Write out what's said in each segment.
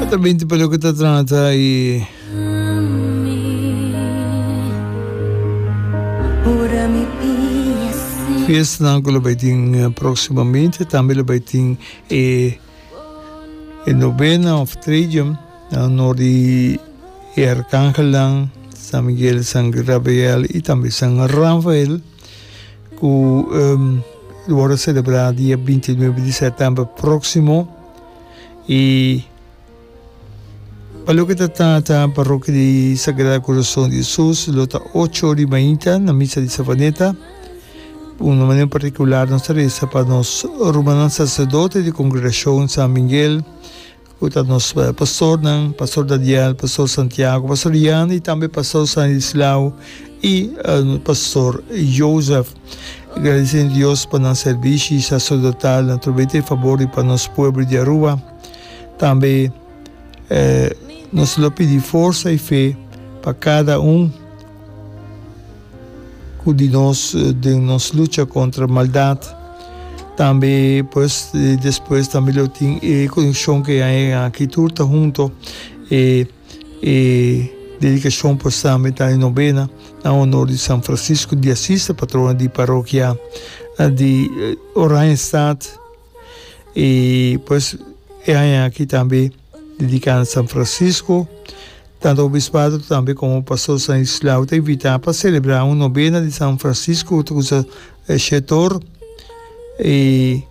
Ata binti pa loke ta trata i fiestanan ku lo bai tin próksimo minte tambe lo bai tin e e novena of tridium na honor di e arkangelnan San Miguel, San Gabriel i tambe San Rafael ku lo wòrdu selebrá dia binti nuebe di sètèmber próksimo. y pa loke ta ta ta parroquia di Sagrado Corazon di Jesus lo ta ocho di mainta na misa di Savaneta un na manera particular nos ta reza pa nos rumannan sacerdote di congregacion San Miguel cu ta nos pastornan Pastor Daniel Pastor Santiago Pastor Jan y tambe Pastor Stanislao y Pastor Joseph. Gradisendo Dios pa nan servishi y sacerdotal na trobeta e fabor di pa nos pueblo di Aruba. Tambe nos lo pidi forsa y fe pa cada un cu di nos den nos lucha contra maldad. Tambe pues despues tambe lo tin e conexion cu e a aki tur ta hunto e. E dedikashon por Samb'e ta e nobena na onor di San Francisco di Asis, e patrona di parokia di Oranjestad. I pues e aña aki tambe dediká na San Francisco. Tantu obispado tambe komo Pastor Stanislao ta invitá pa selebrá un nobena di San Francisco, otra kusa e shetor y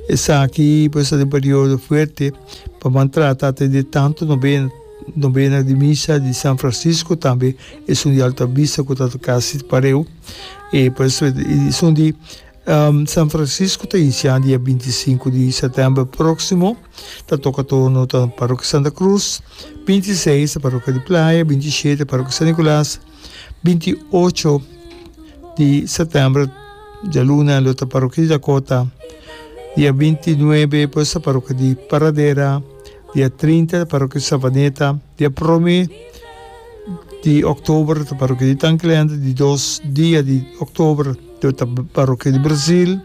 esaki pues ta den periodo fuerte pa ban trata ta di tanto novena novena di misa di San Francisco tambe esun di alta vista cu ta casi pareu y pues esun di San Francisco ta inicial dia binti i sinku di septiember proximo ta toca turno ta Parokia Santa Cruz binti i seis ta Parokia di Playa binti i shete Parokia San Nicolas. Binti i ocho di sètèmber dialuna lo ta parokia di Dakota, dia binti i nuebe pues ta parokia di Paradera, dia trinta ta parokia di Savaneta, dia promé di òktober ta parokia di Tanglènder, di dos dia di òktober lo ta parokia di Brazil,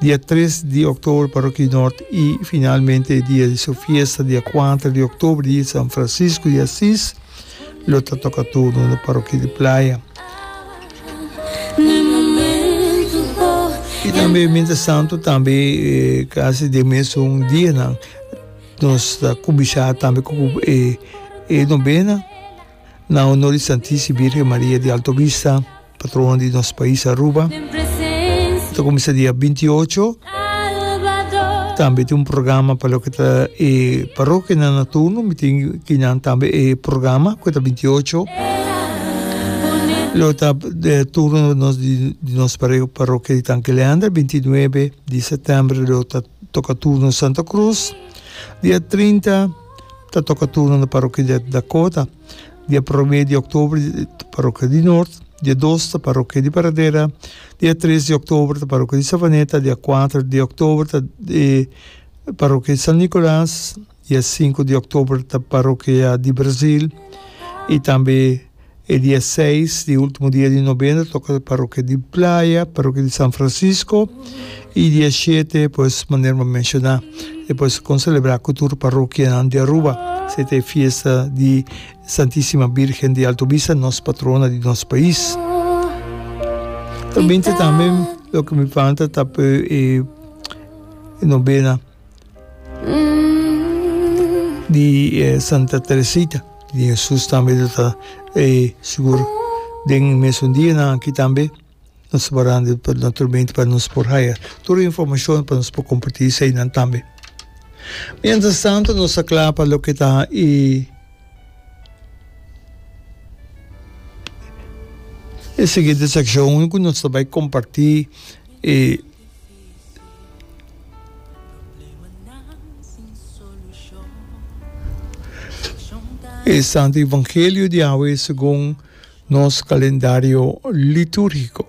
dia tres di òktober parokia di Nòrt i finalmente dia di su fiesta dia kuater di òktober di San Francisco di Asis. Lo ta toca turno na parokia di Playa. Y tambe mientras tanto tambe casi den mesun dianan nos ta cubisha tambe cu e novena na honor di Santisima Virgen Maria di Alto Vista. Patronan di nos pais Aruba ta kuminsá dia binti i ocho. Tambe tin un programa pa loke ta e parokianan na turno, mi tin ki nan tambe e programa ku ta binti i ocho. Lo ta turno nos di di nos parokia di Tanki Leander, binti i nuebe di sètèmber lo ta toka turno Santa Krus. Dia trinta ta toka turno na parokia di Dakota. Dia prome di oktober ta Parokia di Nort, dia dos ta Parokia di Paradera, dia tres di oktober ta Parokia di Savaneta, dia kuater di oktober ta Parokia di San Nikolas, dia sinku di oktober ta Parokia di Brazil i tambe e dia seis, di ultimo dia di nobena, toka Parokia di Playa, Parokia di San Fransisko. I di e shete, pues, manera bo a menshoná, e por kon selebrá ku tur parokianan di Aruba, se ta e fiesta di Santísima Bírgen di Altubisa, nos patrona di nos pais. Ta binta tambe loke mi falta ta p'e e nobena di e Santa Teresita di Hesus tambe ta e sigur den mesun dianan aki tambe. Nos ta parando di pa naturalmente pa nos por haya tur e informacion pa nos por comparti esey nan tambe. Mientras tanto nos ta cla pa loke ta e e siguiente seccion cu nos ta bay comparti e e Santo Evangelio di Yahweh segun. Nos kalendario litúrgiko.